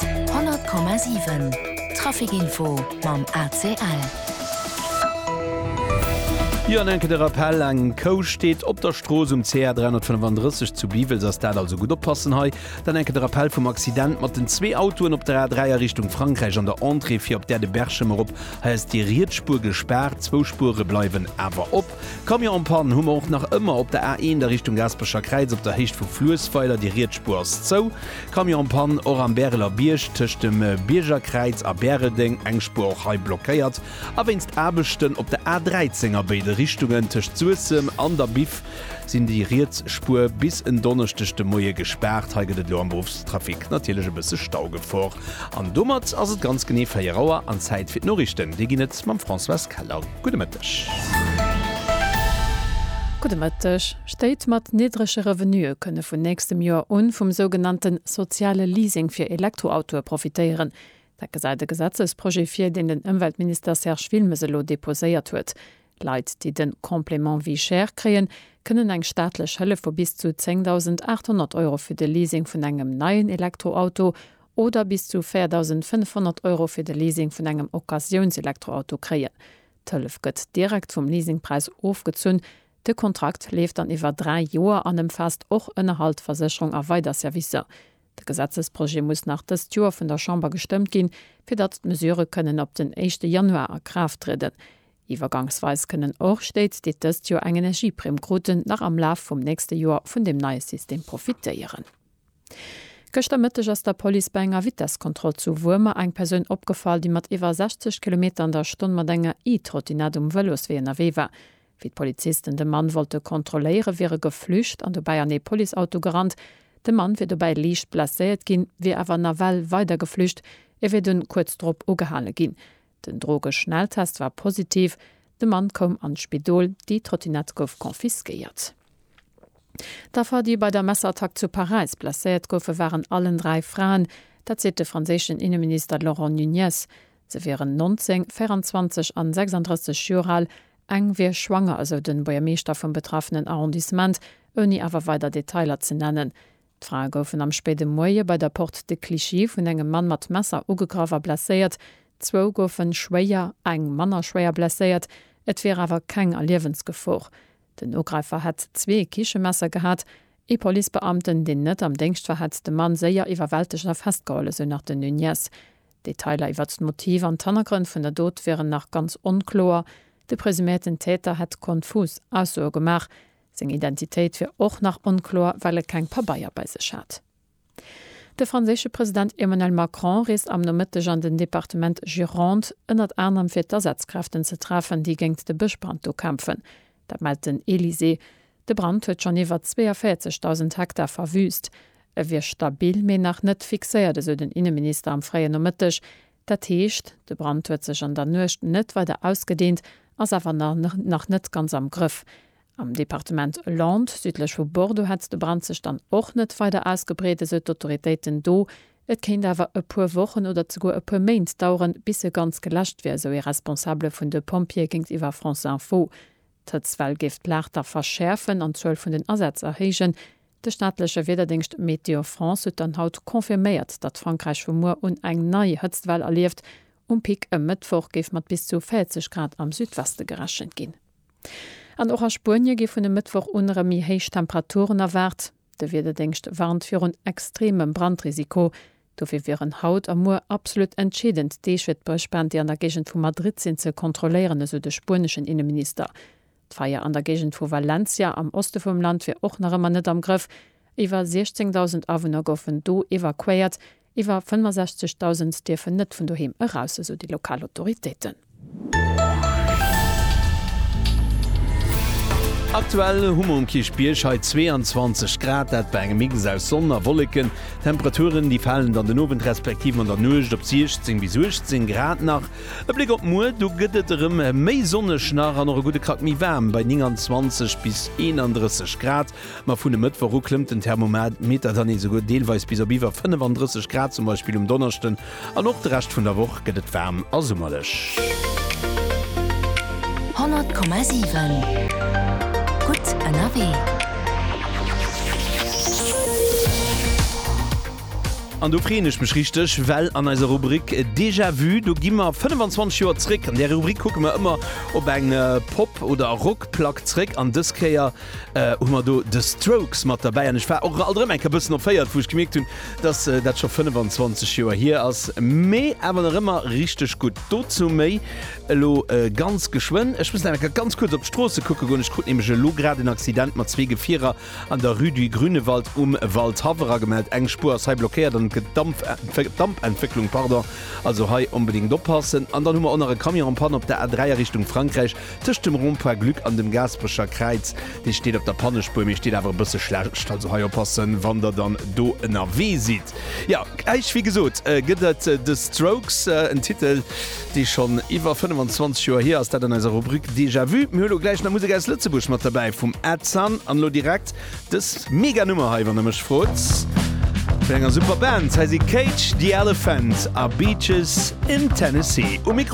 100,7 Traficinfo mam ACL. Jo an enke de Rappell, eng Kou steet op der Strooss um CR 335 zu Biwels, ass dat also gutt oppassen hei. Dann enke de Rappell vum Accident mat den zwee Autoen op der A3 a Richtung Frankräich an der Entrée fir op d'Aire de Berchem erop. Hei ass déi riets Spuer gespaart, zwou Spuere bleiwen awer op. Camion en panne hu mer och nach ëmmer op der A1 a Richtung Gaasperecher Kräiz op der Héicht vu Fluessweiler. Déi riets Spuer ass zou. Camion en panne och am Bäreler Bierg tëscht dem Biergerkräiz a Bäreldeng, eng Spuer och hei blockéiert. A wéinst Aarbechten op der A13 a béide Richtungen tëscht Suessem an der Biff sinn déi riets Spuer bis en Donneschdeg de Moie gespaart. Hei gëtt et elo am Beruffstrafic natierlech e bësse Staugefor. An domat ass et ganz genee 4 Auer an Zäit fir d'Noriichten. Déi ginn et mam Françoise Keller. Gudde Mëtteg. Gudde Mëtteg. Stéit mat niddrege Revenuë kënne vun nächstem Joer un vum sougenannte soziale Leasing fir Elektroautoe profitéieren. Dat gesäit e Gesetzesprojet vir, deen den Ëmweltminister Serge Wilmes elo deposéiert huet. Leit, déi de Complément vie chère kréien, kënnen eng staatlech Hëllef vu bis zu 10.800 Euro fir de Leasing vun engem neien Elektroauto Oder bis zu 4.500 Euro fir de Leasing vun engem Occasiouns-Elektroauto kréien. D'Hëllef gëtt direkt vum Leasingpräis ofgezunn. De Kontrakt leeft dann iwwer dräi Joer an ëmfaasst och Ënnerhalt, Versécherung a weider Servicer. De Gesetzesprojet muss nach dëst Joer vun der Chamber gestëmmt ginn, fir datt d'Mesurë kënnen op den éischte Januar a Kraaft trieden. Iwwergangsweis kënnen och Stéit, déi dëst Joer eng Energieprimm kruten, nach am Laf vum nächste Joer vun deem neie System profitéieren. Gëschter Mëtteg ass der Police bei enger Vitesskontroll zu Wuermer eng Persoun opgefall, déi mat iwwer 60 Kilometer an der Stonn mat enger E-Trottinett um Vëloswee ënnerwee war. Wéi d'Polizisten de Mann wollte kontrolléiere wier e geflücht an dobäi an ee Policeauto gerannt. De Mann wier dobäi liicht blesséiert ginn, wier awer nawell weider geflücht. E wier dunn kuerz drop ugehale ginn. Den Drogeschnelltest war positiv, de Mann koum an d'Spidol, déi Trottinett gouf confisquéiert. D'Affer, déi bei der Messerattack zu Paräis blesséiert goufen, waren allen dräi Fraen. Dat seet de franséischen Inneminister Laurent Nunez. Se wieren 19, 24 an 36 Joer al. Eng wier schwanger, esou de Buergermeeschter vum betraffenen Arrondissement, ouni awer weider Detailer ze nennen. D'Frae goufen am spéide Moie bei der Porte de Clichy vun engem Mann mat Messer ugegraff a blesséiert. Zwou goufe schwéier, eng manner schwéier blesséiert. Et wier awer keng a Liewensgefor. Den Ugräifer hätt zwee Kichemesser gehat. Ee Policebeamten, deen net am Déngscht war, hätt de Mann séier iwwerwältegt a festgeholl, esou nach den Nunez. D'Detailer iwwert d'Motiv an d'Hannergrënn vun der Dot wieren nach ganz onkloer. De presuméierten Täter hätt konfus Aussoe gemaach. Seng Identitéit wier och nach onkloer, well e keng Pabeier bei sech hat. De franséische President Emmanuel Macron reest am Nomëtteg an den Departement Gironde, ënnert anerem fir d'Asazkräften ze treffen, déi géingt de Bëschbrand do kämpfen. Dat mellt den Elysée. De Brand huet schonn iwwer 42.000 Hektar verwüüst. E wier stabil, mee nach net fixéiert, esou den Inneminister am fréien Nomëtteg. Dat heescht, de Brand huet sech an der Nuecht net weider ausgedehnt, ass awer nach net ganz am Grëff. Am Departement Landes, südlech vu Bordeaux, hätt de Brand sech dann och net weider ausgebreet, esou d'Autoritéiten do. Et kéint awer e puer Wochen oder zeguer e puer Méint daueren, bis e ganz geläscht wier, esou ee Responsabele vun de Pompjeeë géintiwwer France Info. D'Hëtztwell géif d'Lag da verschäerfen an d'Zuel vun den Asätz erhéijen, De staatleche Wiederdéngscht Météo France huet dann haut confirméiert, datt Frankräich vu muer un eng nei Hëtztwell erlieft. Um Pic e Mëttwoch géif mat bis zu 40 Grad am Südweste gerechent ginn. An och a Spuenie gi vun e Mëttwoch un erëm méi héich Temperaturen erwaart. De Wiederdéngscht warnt virun extremem Brandrisiko. Dofir wieren haut a muer absolut entscheedend Deeg fir d'Bréchbänn, déi an der Géigend vu Madrid sinn, ze kontrolléieren, esou de spueneschen Inneminister. D'Feier an der Géigend vu Valencia am Oste vum Land wier och nach ëmmer net am Grëff. Iwwer 16.000 Awunner goufen do evakuéiert, iwwer 65.000 dierfen net vun doheem eraus, esou déi lokal Autoritéiten. Aktuell hu mer um Kierchbierg hei 22 Grad, dat bei engem Mix aus Sonn a Wolleken. Temperaturen déi falen dann den Owend respektiv an der Nuecht op 16 bis 18 Grad nach. E Bléck op muer, do gëtt et erëm méi sonneg nach an och e gudde Krack méi waarm bei 29 bis 31 Grad. Ma vun e Mëttwoch u klëmmt den Thermometer dann esouguer deelweis bis op iwwer 35 Grad, zum Beispill um Donneschden An och de Rescht vun der Woch gëtt et waarm a summerlech. 100,7 gutt ënnerwee. An do freeën ech mech richteg, well an eiser Rubrik Déjà Vu, do gi mer 25 Joer zréck. An där Rubrik kucke mer ëmmer op eng Pop oder Rockplack zréck an dës Kéier hu mer do The Strokes mat derbäi an ech war och alt erëm eng Kéier e bëssen erféiert, wou ech gemierkt hunn, dass dat scho 25 Joer hier ass, mee awer nach ëmmer richteg gutt. Dozou méi elo ganz geschwënn. Ech muss nach eng Kéier ganz kuerz op d'Stroosse kucke goen. Ech krut nämlech elo grad en Accident mat zwee Gefierer an der Rue du Grünewald um Waldhaverer gemellt. Eng Spuer ass hei blockéiert an et gëtt Damp, Dampentwécklung, pardon, also hei onbedéngt oppassen. An dann hu mer och nach e Camion en Panne op der A3 a Richtung Frankräich, Tëscht dem Rond-point Glück an dem Gaasperecher Kräiz. Dee steet op der Pannespuer, mee steet awer e bësse schlecht. Also hei oppassen, wann der dann do ënnerwee sidd. Jo, gläich, wéi gesot, gëtt et The Strokes, en Titel, dee schonn iwwer 25 Joer hier ass. Dat an eiser Rubrik Déjà Vu. Mir hu lo gläich nach Musek aus Lëtzebuerg mat derbäi vum Ed Sun. An elo direkt dës mega Nummer hei, wann der mech frot, vun enger super Band. Hei si Cage the Elephant a Beaches in Tennessee um Mikro.